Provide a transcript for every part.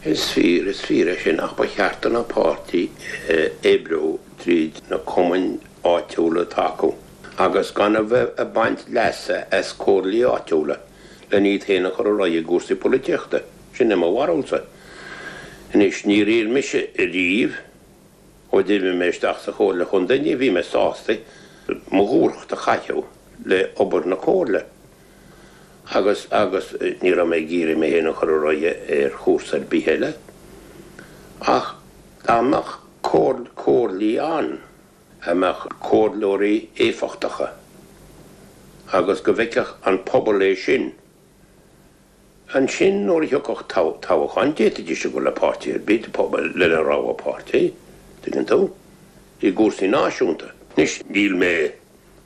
Is fíor, is fíor é sin, ach ba cheart do na páirtithe oibriú tríd na cumainn áitiúla atá acu agus gan a bheith ag baint leasa as comhairlí áitiúla len iad féin a chur ar aghaidh i gcúrsaí polaitíochta. Sin é mo bharúlsa. Anois, níor iarr mise riamh, ó d'imigh mé isteach sa Chomhairle Chontae, ní bhí mé sásta mo dhúthracht a chaitheamh le obair na Comhairle. agus agus ní raibh mé ag iarraidh mé féin a chur ar aghaidh ar chúrsa ar bith eile ach dá mbeadh comhairlí ann a mbeadh comhairleoirí éifeachtacha agus go bhfeicfeadh an pobal é sin. Ansin, nuair a thiocfadh toghchán, d'fhéadfaidís a dhul le páirtí ar bith de phobal lena rogha páirtí, tuigeann tú? i gcúrsaí náisiúnta. Anois, níl mé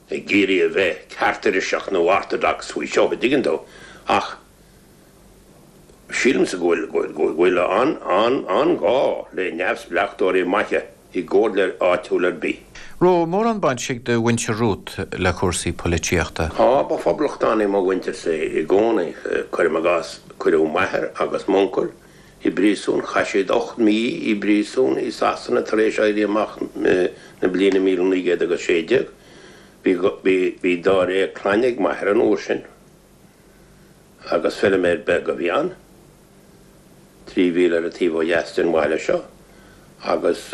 ag iarraidh a bheith ceartiriseach nó orthodox faoi seo, tuigeann tú, ach sílimse go bhfuil an, an, an-ghá le neamhspleachtóirí maithe. i gcomhairle áitiúil ar bith. An raibh mórán baint ag do mhuintir romhat le cúrsaí polaitíochta. Á, ba phoblachtánaigh mo mhuintirsa i gcónaí. Cuirim i gcás, cuireadh m'athair agus m'uncail i bpríosún, chaith siad ocht mí i bpríosún i Sasana tar éis Éirí Amach na bliana míle naoi gcéad agus sé déag. Bhí, bhí dáréag clainne ag m'athair an uair sin. Agus feilméar beag a bhí ann. trí mhíle ar an taobh ó dheas den bhaile seo, agus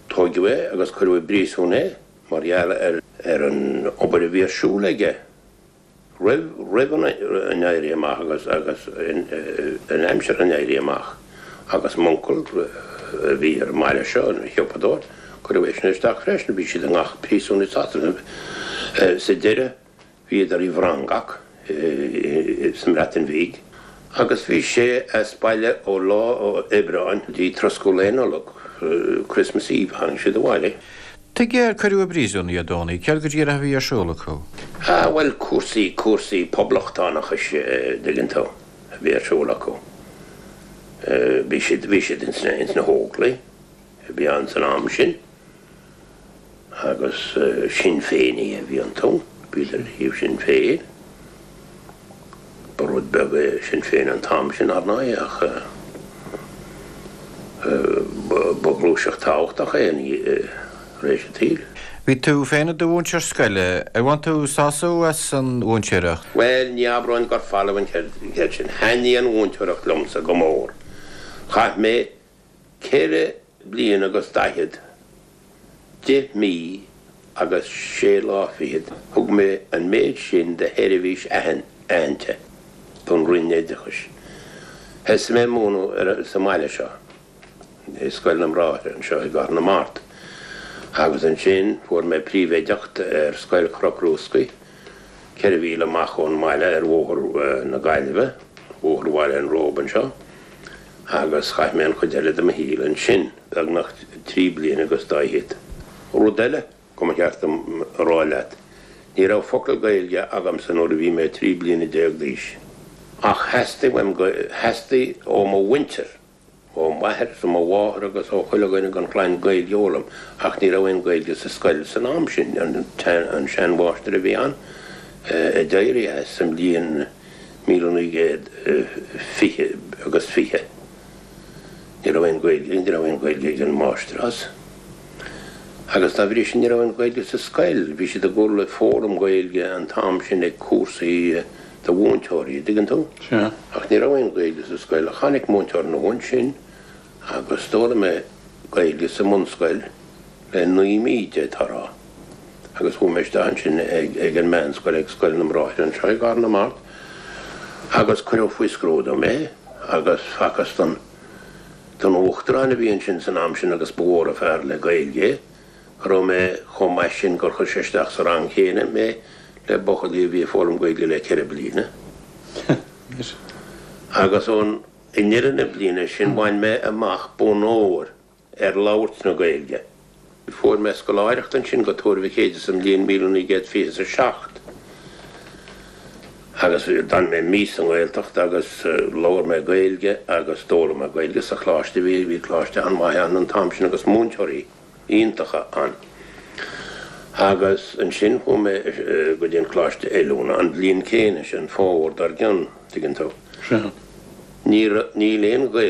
tóigeadh é agus cuireadh i bpríosún é mar gheall ar an obair a bhí ar siúl aige roimh an Éirí Amach agus in aimsir an Éirí Amach. Agus m'uncail, a bhí ar an mbaile seo, ina shiopadóir, cuireadh eisean isteach freisin. Bhí siad i ngach príosún i Sasana sa deireadh. Bhíodar i bhFrongoch sa mBreatain Bhig agus bhí sé as baile ó lá Aibreáin go dtí troscadh Lae Nollag, Christmas Eve, a tháinig siad abhaile. Tuige ar cuireadh i bpríosún iad, Dony? Céard go díreach a bhí ar siúl acu? Á, bhuel, cúrsaí, cúrsaí poblachtánachais, dtuigeann tú, a bhí ar siúl acu. Bhí siad, bhí siad ins na hÓglaigh a bhí ann san am sin. agus Sinn Féinigh a bhí iontu, bhíodar ar thaobh Sinn Féin, ba rud beag é Sinn Féin an t-am sin, ar ndóigh, ach ba ghluaiseacht tábhachtach é tar éis an tsaoil. Bhí tú féin i do mhúinteoir scoile, ar bhain tú sásamh as an mhúinteoireacht? Bhuel, ní abróinn gur folamh an cheird sin, thaitnigh an mhúinteoireacht liomsa go mór. Chaith mé Ceithre bliain agus daichead, deich mí agus sé lá fichead thug mé an méid sin de sheirbhís aitheanta don Roinn Oideachais. Thosaigh mé ag múineadh sa mbaile seo, i Scoil na mBráithre anseo i gCathair na Mart, agus ansin fuair mé príomhoideacht ar Scoil Chnoc Rúscaigh, ceithre mhíle amach ón mbaile ar Bhóthar na Gaillimhe, Bóthar Bhaile an Róba anseo. agus chaith mé an chuid eile de mo shaol ansin, beagnach trí bliana agus dá fhichead. Rud eile go mba cheart dom a rá leat, ní raibh focal Gaeilge agamsa nuair a bhí mé trí bliana déag d'aois. Ach theastaigh ó mo mhuintir, ó m'athair is ó mo mháthair agus ó chuile dhuine den chlann Gaeilge a fhoghlaim ach ní raibh aon Ghaeilge sa scoil san am sin, an seanmháistir a bhí ann, a d'éirigh as sa mbliain. míle naoi gcéad fiche agus fiche. Ní raibh aon Ghaeilge, ní raibh aon Ghaeilge ag an Máistreás agus dá bhrí sin ní raibh aon Ghaeilge sa scoil. Bhí siad ag gabháil ag foghlaim Gaeilge an t-am sin ag cúrsaí do mhúinteoirí, an dtuigeann tú? Sea. Ach ní raibh aon Ghaeilge sa scoil. Tháinig múinteoir nua ansin agus d'fhoghlaim mé Gaeilge sa mbunscoil le naoi mí d'fhéadfá a rá, agus chuaigh mé isteach ansin ag an meánscoil ag Scoil na mBráithre anseo i gCathair na Mart agus cuireadh faoi scrúdú mé agus facthas don don Uachtarán a bhí ansin san am sin agus ba mhór an fear le Gaeilge é go raibh mé chomh maith sin gur chuir sé isteach sa rang chéanna mé le buachaillí a bhí ag foghlaim Gaeilge le ceithre bliana agus ón I ndeireadh na bliana sin bhain mé amach bonn óir ar labhairt na Gaeilge. Fuair mé scoláireacht ansin go Tuar Mhic Éadaigh sa mbliain míle naoi gcéad fiche is a seacht agus d'fhan mé mí sa nGaeltacht agus labhair mé Gaeilge agus d'fhoghlaim mé Gaeilge sa choláiste. Bhí coláiste an-mhaith ann an t-am sin agus múinteoirí. iontacha ann. Agus ansin chuaigh mé go dtí an Coláiste Oiliúna an bhliain chéanna sin, an fómhar dár gcionn, tuigeann tú. Níl aon Ghaeltacht.